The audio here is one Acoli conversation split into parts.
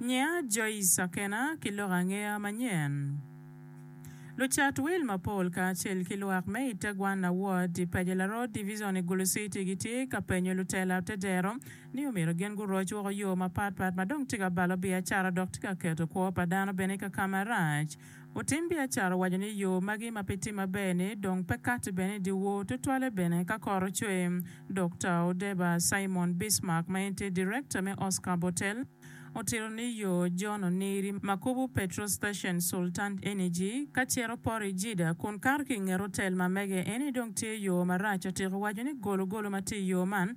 Nyiya Joyce Akena ki lok angeya manyen. Lucat wil mapol kacel ki lwak me Itegwana Ward i Paja Laroo Divizon i Gulu Citi gitye ka penyo lutela te dero ni omyero gin guroc woko yo mapatpat ma dong tye ka balo biacara dok tye ka keto kwo pa dano bene i kaka marac. Lutim biacara owaco ni yo magi ma pe tye maber-ni dong pe katti bene i dyewor tutwalle bene ka kor ocwe. Dokta Odeba Simon Bismark ma en tye direkta me Oscar Botel otito ni yo John Oniri, Makubu Petrol Station, Sultan Energy ka cito Pori Jida kun kato ki i nget otel ma mege eni dong tye yo marac. Otyeko waco ni gologolo ma tye i yo man,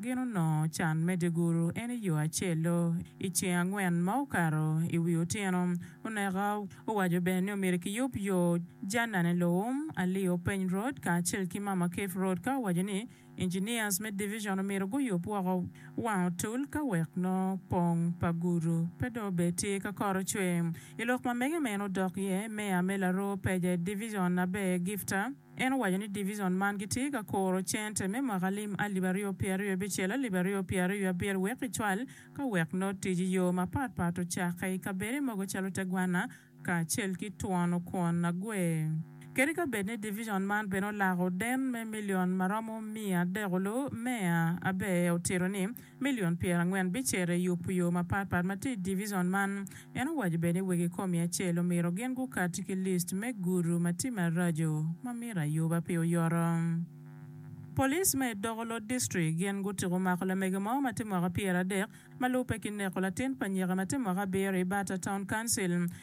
Gin onongo can me dyeguru en i yo acel-lo. I ceng angwen ma okato i wi otyeno oneka, owaco bene ni omyero kiyub yo Janane Loum, Ali Openy Road kacel ki Mama Keif Road ka owaco ni engineers me division omyero guyub woko wang otul ka wek nongo pong pa gudu pe dong obed tye ka koro cwer. I lok ma mege ma en odok iye, Meya me Laroo Peje Division aber Gifta, En owaco ni divizon man gitye ka kuro cente me mwaka lim alip aryo pye aryo abicel alip aryo pye aryo abiro wek kicwal ka wek nongo tic i yo mapat pat ocakke i kabede mogo calo te gwanna kacel ki twono kwon nagwer. Kadi ka bed ni divizon man bene olako den me milion maromo miya adek olu, Meya Abe otito ni, milion pyerangwen bicito i yubu yo mapat pat ma tye i divizon man. En owaco bene ni wegi komi acel omito gin gukati ki list me gudu ma tye maraco ma mito ayuba pi oyoto. Police ma i Dokolo District gin gutiko mako lamege mo ma tye mwaka pyera dek ma lube ki neko latin pa nyika ma tye mwaka abiro i Bata Town Council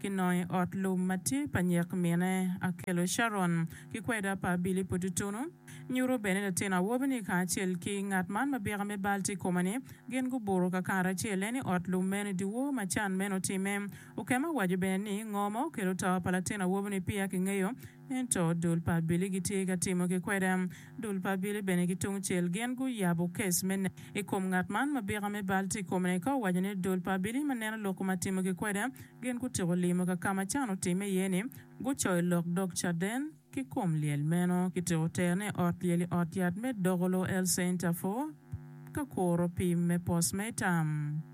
Kinongo i ot lum ma tye pa nyek mine akelo Sharon ki kweda pa Billy pu tutunu. Nyuto bene latin awobi-ni kacel ki ngat man ma byeka me bal tye i kome-ni gin gubuto kakare acel. En i ot lum meno i dyewor ma can meno otimme. Okema owaco bene ni, Ngo ma okelo to pa latin awobi-ni peya kingeyo. Ento dul pa abili gitye ka timo ki kweda. Dul pa abili bene ki tungcel gin guyabo kes me nek i kom ngat man ma bika me bal tye i kome-ni. Ka owaco ni dul pa abili ma neno lok koma timo ki kweda, gin gutyeko limo ka ka ma can otimme iye ni, gucoyo lok dog caden ki kom lyel meno. Kityeko tero ne ot lyel i ot yat me Dogolo El Center for ka kuro pim me postmatam.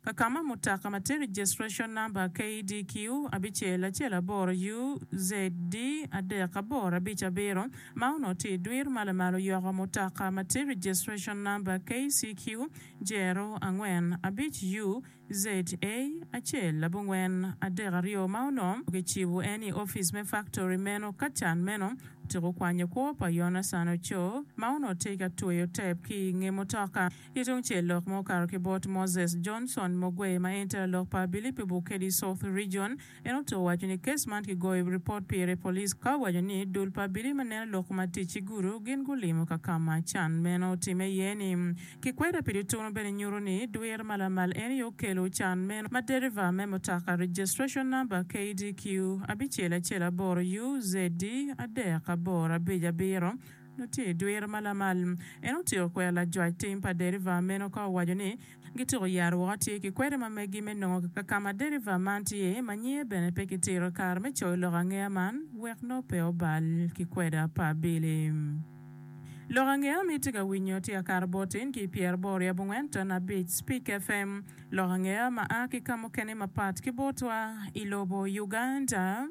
Kakama mutoka ma tiki Gestration Number KDQ abicel acel aboro UZD adek aboro abic abiro ma onongo tye i dwir ma lamal oyoko mutoka ma tiki Gestration Number KCQ Jero angwen abic UZA acel abongwen adek aryo ma onongo kicibo en i opic me faktori meno ka can meno otiko kwanyo kwo pa Yonacan Ocoo ma onongo tye ka tweyo tep ki i nge mutoka. Ki tungcel lok ma okato ki bot Moses Johnson Mogwei ma en tera lok pa Abilip i Bukedi South Region, en oto waco ni kes man kigoyo ripot pire police ka owaco ni dul pa Abilip ma neno lok ma tic ci gudo gin gulimo ka ka ma can meno otimme iye ni kikweda pi dutunu bene nyuto ni dwir ma lamal en aye okelo can meno ma deriva me mutoka registration number KDQ abicel acel aboro UZD adek aboro abic abiro nongo tye i dwiro ma lamal. En otyeko kwero lajwac tim pa deriva meno ka owaco ni, Gituko yat woko atye ki kwede ma megi me nongo ka ka ma deriva man tye ma nyinge bene pe kitito kare me coyo lok angeya man wek nongo pe obal ki kweda pa abili. Lok angeya ma itye ka winyo tye akato botin ki pyera boro i abongwen ton abic Speak FM, lok angeya ma a ki ka mukene mapat ki botwa i lobo Uganda.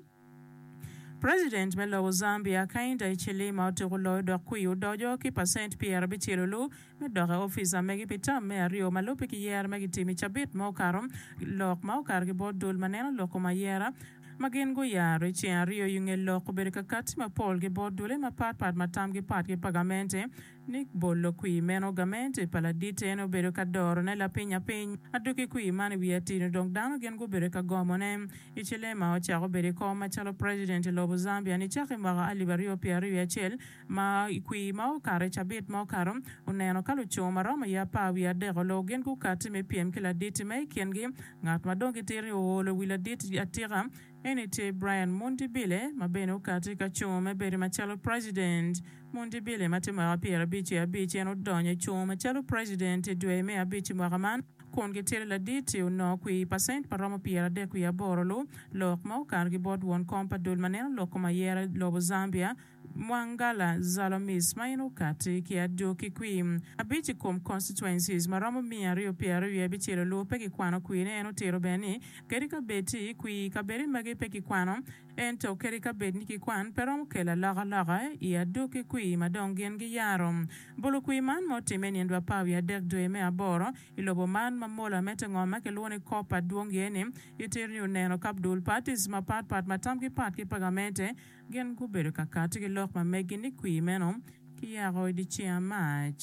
President me lobo Zambia Hakainde Hichilema otuko loyo dok kwio odoco ki pacent pyera abicel olu me dok i office amege pi tam me aryo ma lube ki yere ma gitimo i cabit ma okato lok ma okato ki bot dul ma neno lok kom ayera ma gin guyaro i ceng aryo yunge lok obedo kakati mapol ki bot dule ma pat pat ma tamgi pat ki pagamente Nick bolo kwir meno, Gamente pa ladit eno bedo ka dorone lapiny apiny. Adwogi kwir man i wi atino dong dano gin gubedo ka gomone. Hichilema ocako bedo i kom macalo president i lobo Zambia nicaka i mwaka alip aryo pyera aryo wiye acel, ma i kwir ma okato i cabit ma okato, oneno ka luco ma romo iye apar wiye adek oloo gin gukatti me pyem ki ladit ma i kingi ngat ma dong gitito-ri oolo wi ladit atika. Eni tye Brian Mundibile ma bene okati ka cung me bedo macalo President. Mundibile ma tye mwaka pyera abic ki abic en odonyo i cung macalo President i dwe me abic i mwaka man kun gitito ladit i onongo kwir pacent ma romo pyera adek wiye aboro lu lok ma okato ki bot won kom pa dul ma neno lok kom ayera i lobo Zambia Mwangala Zalomis ma in okati ki adwo ki kwi abic i kom constituencies ma romo miya aryo pi aryo aye bicelo lur pe ki kwano kwi ne en otiro bene ni kadi ka bed ti kwi i kabedi magi pe ki kwano en to kadi ka bed ni ki kwan pe romo kelo aloka loka i adwo ki kwi ma dong gin gi yaro bulu kwi man ma otime nyen dwa par wiye adek dwe me aboro i lobo man ma mola me te ngom ma ki lwongo ni copper dwong iye ni itiro ni oneno kap dul parties ma pat pat ma tam gi pat ki pagamente Gin gubedo ka kati ki lok ma megi ni kwir meno kiyako i dye Ceng Mac.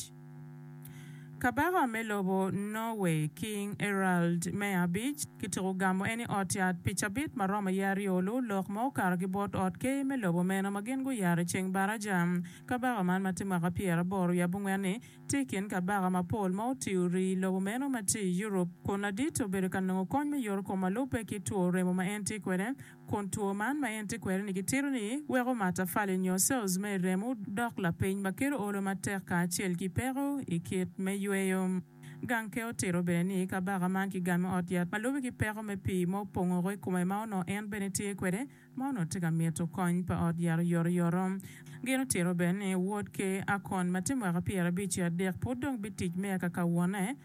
Kabaka me lobo Norway, King Harald me Abic, kitiko gamo en i ot yat pi cabit ma romo iye aryo lu lok ma okato ki bot ot ker me lobo meno ma gin guyaro i ceng baraja. Kabaka man ma tye mwaka pyer aboro wiye abongwen-ni tye i kin kabaka mapol ma otiyo i rii lobo meno ma tye i Europe kun ladit obedo ka nongo kony me yorokom ma lubbe ki two remo ma en tye kwede kun two man ma en tye kwede-ni gitito ni weko matafali nyo cells me i remo dok lapiny ma kelo olo matek kacel ki peko i kit me yweyo. Gankhe otito bene ni kabaka man kigame ot yat ma lube ki peko me pii ma opongo woko i kome ma onongo en bene tye kwede ma onongo tye ka mito kony pa ot yat oyotoyoto. Gin otito bene ni wod Ker Akon ma tye mwaka pyerabic ki adek pud dong bitic me aka ka wone,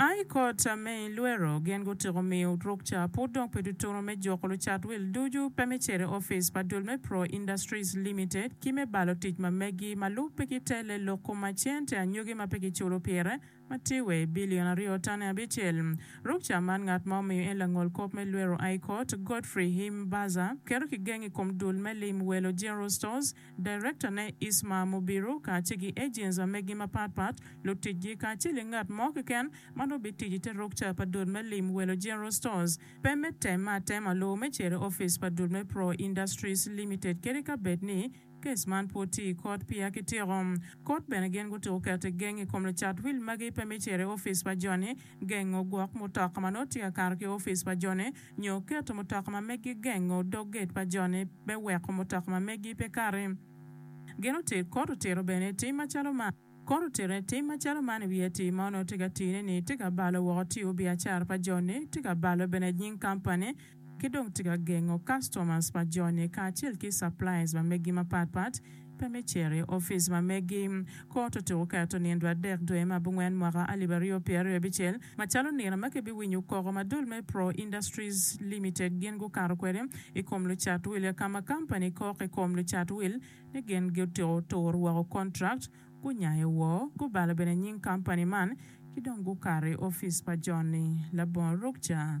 A I kot a me i lwero, gin gutyeko miyo ruk ca pud dong pe tutunu me juko lucat wil ducu pe me cito i opic pa dul me Pro Industries Limited ki me balo tic ma megi ma lub pe ki telle lok kom ma cente anyogi ma pe ki culo pire ma tye wa i billion aryo tane abicel. Ruk ca man ngat ma omiyo en langol kop me lwero a i kot, Godfrey Himbaza, keto ki geng i kom dul me lim welo General Stores, Direktane Isma Mubiru kacel ki ejenca megi mapat pat, luticgi kacel ki ngat mo keken ma nongo bitic i te rukca pa dul me lim welo General Stores pe me temme atema lowo me cere ofice pa dul me Pro Industries Limited kadi ka bed ni kes man pwod tye i kot peya kityeko kot bene gin gutuko kete geng i kom lucat wil magi pe me cere ofice pa joni gengo gwok mutoka ma nongo tye ka kato ki ofice pa joni nyo keto mutoka ma megi gengo dog gate pa jone me weko mutoka ma megi pe kati. Gin otir kor otiro bene tim macalo man. Kor otiro ne tim macalo man i wi atir ma onongo tye ka tine ni tye ka balo woko tiyo biacara pa joni, tye ka balo bene nying kampani, ki dong tye ka gengo customers pa joni kacel ki suppliers ma megi mapat pat. Pe me cito i opic ma megi. Kot otuko keto nindwa adek dwe me abongwen mwaka alip aryo pye aryo abicel macalo nino ma kibiwinyo koko ma dul me Pro Industries Limited gin gukato kwede i kom lucat wille ka ma kampani kok i kom lucat will ni gin gutiko turo woko kontrakt, gunyayo woo, gubalo bene nying kampani man ki dong gukato i opic pa John-ni labongo ruk ca.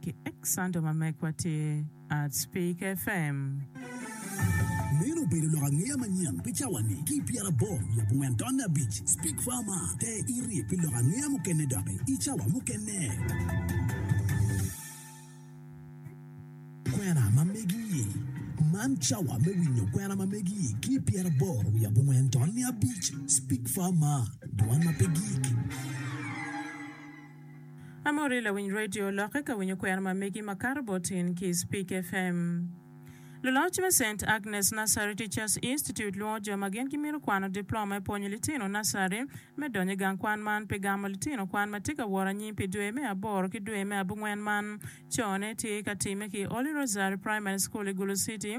ki Xanto ma megwa tye at Speak FM. Meno obedo lok angeya manyen pi cawa-ni ki i pyerabor lub ongwen tonne abic. Speak Farma, Te iri pi lok angeya mukene doki i cawa mukene. Kwena ma megi, Man cawa me winyo kwena ma megi ki i pyerabor wiye abongwen tonne abic. Speak Farma, Dwan ma pe gik. Amori lawiny radio lokke ka winyo kwena ma megi makato bot in ki Speak FM. Luloc me Saint Agnes Nursery Teachers Institute lwongo jo ma gin gimito kwano diploma me pwonyo litino nursery me donyo i gang kwan man pi gamo litino kwan ma tye ka woro anyim pi dwe me aboro ki dwe me abungwen man cone tye ka timme ki Holy Rosary Primary School i Gulu City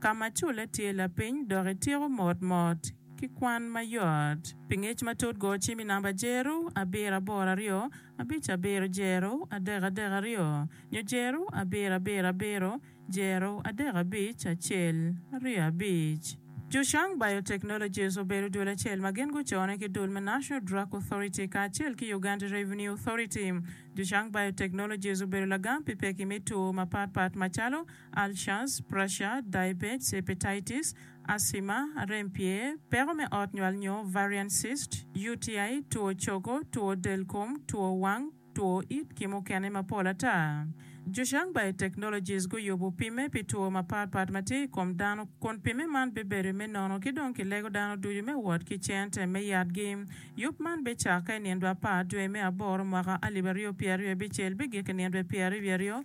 ka ma culle tye lapiny dok ityeko mot mot ki kwan mayot. Pi ngec matut go cim i namba jeru abiro aboro aryo abic abiro jeru adek adek aryo nyo jeru abiro abiro abiro jeru adek abic acel aryo abic. Zhushang Biotechnologies obedo dul acel ma gin gucone ki dul me National Drug Authority kacel ki Uganda Revenue Authority. Zhushang Biotechnologies obedo lagam pi pekki me two mapatpat macalo ulcers, pressure, diabetes, hepatitis, asthma, rem pye, peko me ot nywal nyo variant cyst, UTI, two cogo, two del kom, two wang, two it ki mukene mapol ata. Zhuxiang Biotechnologies guyubu pimme pi two mapat pat ma tye i kom dano kun pimme man bibedo i me nono ki dong ki lego dano ducu me wot ki cente me yatgi. Yub man bicakke i nindwa apar dwe me aboro mwaka alib aryo pyeraryo bicel bigik i nindwe pyeraryo wiaryo.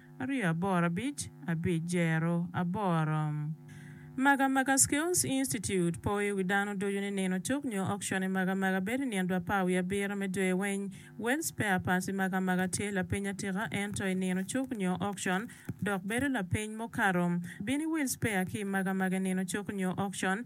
aryo aboro abic abic jero aboro. Magamaga Skills Institute po i wi dano ducu ni nino cuk nyo okcon i Magamaga bedo i nino dwe apar wiye abiro me dwe weng. Wel Spare Parts i Magamaga tye lapeny atika ento i nino cuk nyo okcon dok bedo lapeny mukato. Bini Wel Spare ki i Magamaga i nino cuk nyo okcon.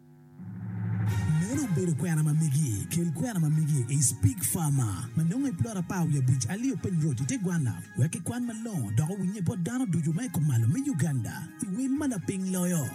Meno obedo kwena ma megi. Kel kwena ma megi i Spig Farmer ma nongo i plot apar wiye abic Alio Peng Road i te gwanna wek kikwan malongo dok owinnye bot dano ducu ma i kom malo me Uganda i wel ma lapiny loyo.